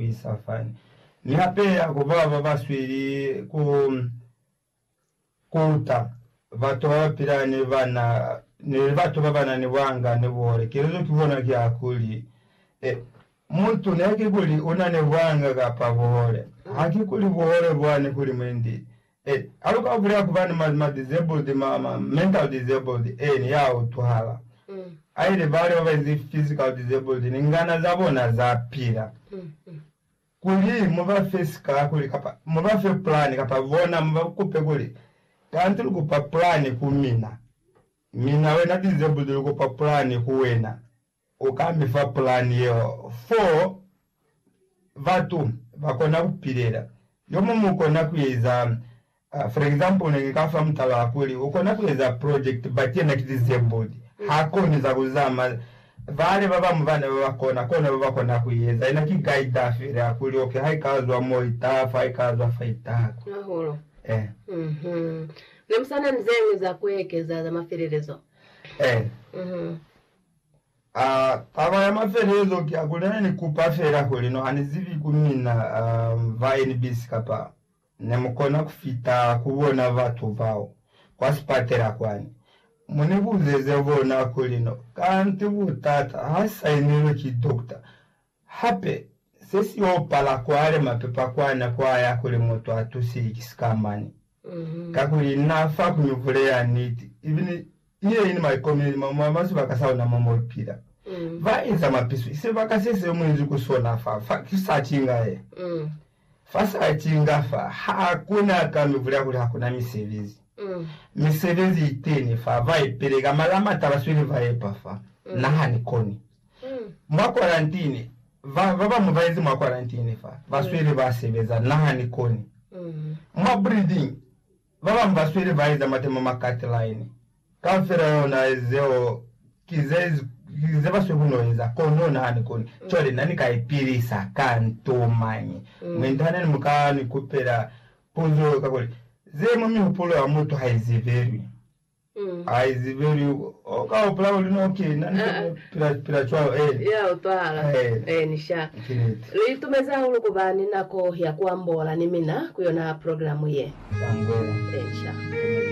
ku isa fani. Mi hape ha ku ba ba ba sweli ku kuta batu ba ba pila ni bana ni batu ba ba na ni bwanga ni buhole. Kelezo ki bona ki ya kuli, e, mutu ne ki kuli u na ni bwanga kapa buhole, ha ki kuli buhole bwani kuli mwendi E, ha lu ka bulela ku ba ni ma, ma disabled, ma, ma mental disabled, e, ni ya utwahala. Haili bale ba ba izi physical disabled, ni ngana za bona za pila, kuli mu ba fe sikakuli, kapa mu ba fe plan, kapa bona mu ba kupe kuli, Kanti lu kupa plan ku mina, mina wena disabled lu kupa plan ku wena, U ka mi fa pulani yeo fo batu ba kona ku pilela. Yo muñwi u kona ku eza, for example, ne ni ka fa mutala wa kuli u kona ku eza project but yena ki disabled, ha koni za ku zama. Bale ba bañwi bana ba ba kona, kona ba ba kona ku eza. Yena ki guider fela ya kuli okay, ha i ka zwa mo i taha fa, ha i ka zwa fa i taha kwa. Hahulu. Eh. Mhm. Ne mu sa na ni ze ñwi za ku ekeza za mafelelezo? Eh. Mhm. A Taba ya mafelezo ki ya kuli ne ni kupa fela kuli no hani zibi ku mina ba NBC kapa ne mu kona ku fita ku bona batu bao kwa sipatela kwani. Mu ni buzeze bona kuli no kanti butata ha sainilwe ki dokota Hape, se si y'o pala kwale mapepa kwa nako a ya kuli mutu a tusiwi ki sikamani. Kakuli n'a fa kuñuvule ya niti, ibile ye i ni maikomeli ma mwa ba sibaka sa ona mo mo pila. Ba eza mapiso, i sebaka se se mu inzi ku sona fa, fa ki sa cinga ye. Fa sa cinga fa, ha ku na ka mi bulela kuli ha ku na misebezi. Misebezi i teni fa, ba i peleka, mara ha m'a taba sweli ba epa fa na ha ni koni. Mwa kwarantini, ba ba bañwi ba inzi mwa kwarantini fa, ba sweli ba sebeza, na ha ni koni. Mwa breeding, Ba bañwi ba sweli ba eza matemo ma cut-line. Kaufela ona zeo ki ze, ki ze ba sweli ku n'o eza. Kono na ni koni. Cwale, na ni ka ipilisa ka nto mañi? Mwi ntahaneni mu ka ni kupela puzo kakuli, Ze mwa mihupulo ya mutu ha i zibilwi. Haizibeli u ka hupula kuli no kina ni to pila, pila cwalo. Ee. Ya utwahala. Ee. Ee, ni sha. Ki niti. Lu itumezi hahulu ku ba ni nako ya ku ambola ni mina ku yona programu ye. Zambulela. Ee, ni sha.